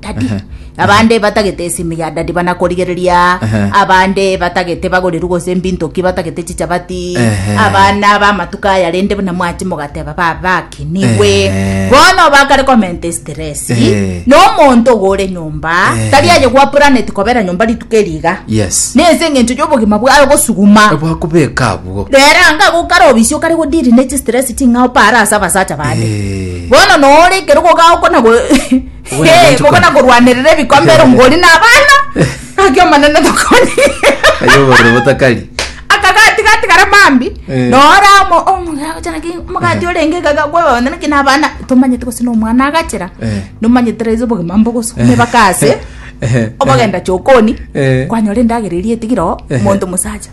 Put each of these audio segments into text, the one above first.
Dadi. Ehe. Abande batagete esimu ya dadi bana korigereria. Ehe. Abande batagete bagoriru gose mbintoki batagete chichabati. Ehe. Abana bamatuko aya rende buna mwachi mogateba baba ki niwe. Ehe. Bono bakare komenta estress. Ehe. No monto ogore nyomba. Ehe. Tari aye gwa planet kobera nyomba rituko eriga. Yes. Nese engencho yobogima bwaye gosuguma. Bwakobeka abwo. Rero anga gokara obisi okare godiri ne chistress ching'ao para ase abasacha bande. Eh. Bono nore ekero gogaokona go Hey, koko nakorwanerera ebikombe ero ngori na abana ngaki omonene tokoni Aye obororo botakari. akagati gatigara mambi Eh. noramo omogati orenge gagakwebana kina abana tomanyete gose nomwana agachera Eh. nomanyete raiso obogima mbogoso mebakase Eh. obogenda chokoni Eh. kwanyora endagera eria etigire oo Eh. monto mosacha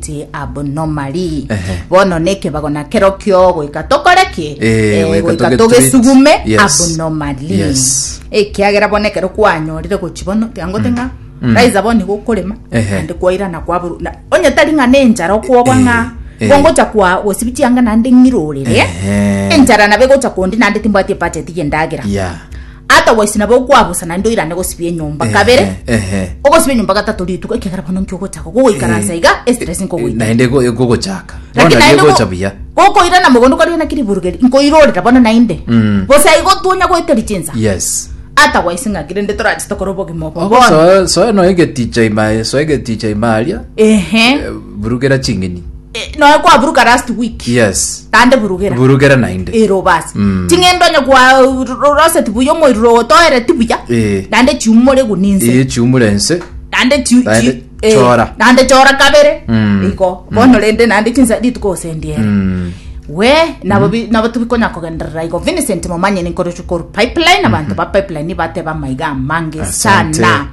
ti abnormally Ehe. bono nekebago na kerokio goika tokore ki Eh, Eh, goika goika togetreat. togesugume Yes. abnormally Yes. ekiagera bono ekero kwanyorire gochi bono tiango ting'a raiza bono nigo okorema Ehe. ande kwairana kwaburu na- onye tari ng'a nenchara okwogwa Eh, ng'a eh. gongocha kwa gosibi chianga nande ng'irorere Ehe. enchara nabe gocha kondi nande timbwati ebacheti yendagera ya ata gwaisi nabo okwabusa naende oirane gosibia enyomba Ehe, kabere ehe. ogosibia enyomba gatato rituko ekegera bono nki ogochaka gogoikaransa iga estress nkogoita naende go- egogochaka Lakini bono naende egocha go- buya gokoirana mogondo kwaria naki riburugeri nkoirorera bono naende Mm. gose aigo twonya goeta richinsa yes ata gwaisi ng'aki rende torache tokore obogima obo Ogo bono soe- soe no egeticha imaye soe egeticha imaria ehe burugera ching'eni Eh, noe kwaburuka last week yes tande burugera burugera nainde ero basi Mm. ting'endo onye kwaroseti buya omoriro otoere tibuya Eh. nande chiumore guninse eye chiumure ense nande chi- Naende chi- eh, chora. nande chora kabere Mm. iko bono rende nande chinsa rituko osendiere Mm. we nabo bi- nabo tubikonya kogenderera iko vincent momanye ninkorochukuru pipeline abantu ba pipeline bateba maiga amange Asante. sana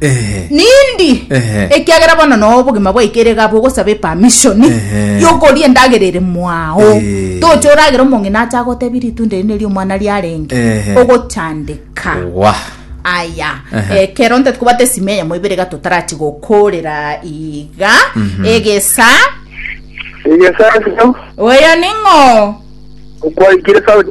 Ehe. nindi Ehe. ekiagera bono noo obogima bwaikere iga abwo ogosaba epamishoni Ehe. yokoria endagera ere mwao Eh. toche oragere omong'ina acha agotebi ritunda eri neri omwana riarenge Ehe. ogochandeka wa aya Ehe. ekero nte tukobata esimi eyemo ibere iga totarachi gokorera iga egesa Igesasio, oyo ning'o okwaikire sauti.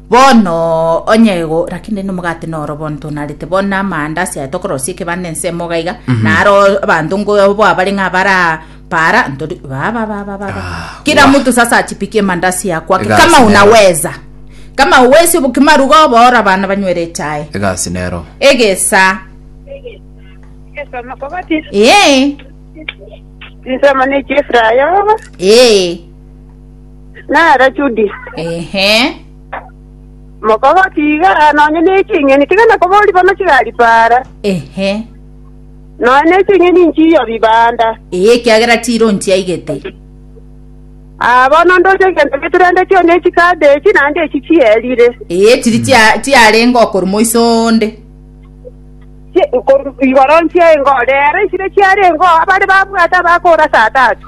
Bono onye go lakini rende omogate noro bono tonarete bono na amaandasi aya tokorosia ekebanda ensemo iga iga na aro abanto ngobo abarenge abara para ntori baba baba baba Ah, kila wah. mtu sasa achipikie mandasi ya kwake Egasi kama nero. unaweza kama uwezi bukimaruga obora bana banywere chai egasi nero egesa Esoma kobati. ee Nsoma ne chifra yoba. ee nere Judi. Ehe. Mokogoki iga nonye neching'eni, tiga nakobori bono chigari para, Ehe. nonye neching'eni nchiyo bibanda. Eye ekiagera tiro nchiaigete. Ah, bono ndoche egento geturende chio ne chikade echi naende echi chierire. Eye tiri chia- chiarenge okoru moiso onde. Chi- koru- Igoro nchiaengo, rero esire chiarengo abare babwate abakora saa tatu.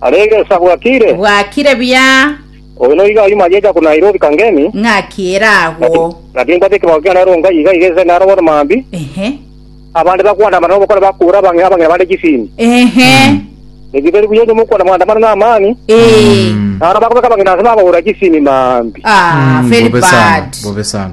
Aria egesa bwakire. Bwakire buya. Oyo noigo ayio magecha korwa Nairobi Kangemi. Ng'aki ere agwo. Gati nkwate ekebao kiane Rongai iga iga egese naro bono mambi. Ehe. Abande bakwandamana nobokore bakura abange abang'ina bande chisimi. Ehe. Eki tari buya onye mokwana mwandamana na amani. Ee. Naro bakobeka abang'ina ase babagora chisimi mambi. Ah, very bad. Bobe sana.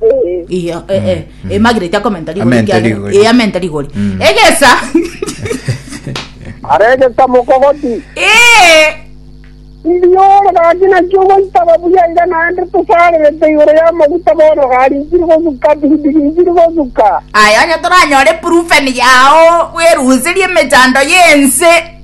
Eh, Iyo, eh, eh, eh, Margaret akomenta rigori Amente kiagera- rigori. eh, amente rigori Mm. egesa aregesa mokogoti eh, ndiore gaki nakio goitaba buya iga naende tosarerete igoro y'amaguta bono gari nsiri gosuka bidigi nsiri gosuka aya onye toranyore proven yao weruserie emechando yense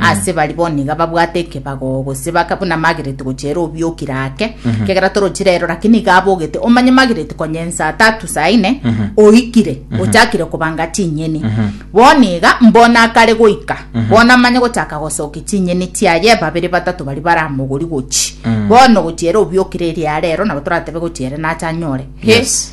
Aase baria bono niga babwate ekebago, gose baka buna Margaret gochera obioki rake, ekiagera torochi rero, lakini iga abogete. Omanye Margaret konya ensa tatu saa ine oikire, ochakire kobanga chinyeni. Bono iga mbono akare goika, bono amanye gochaka gosokia chinyeni chiaye, babere batato baria baramogori gochi. Bono gochiera obioki reri are ero, nabo toratebe gochiere nache anyore. He! Yes.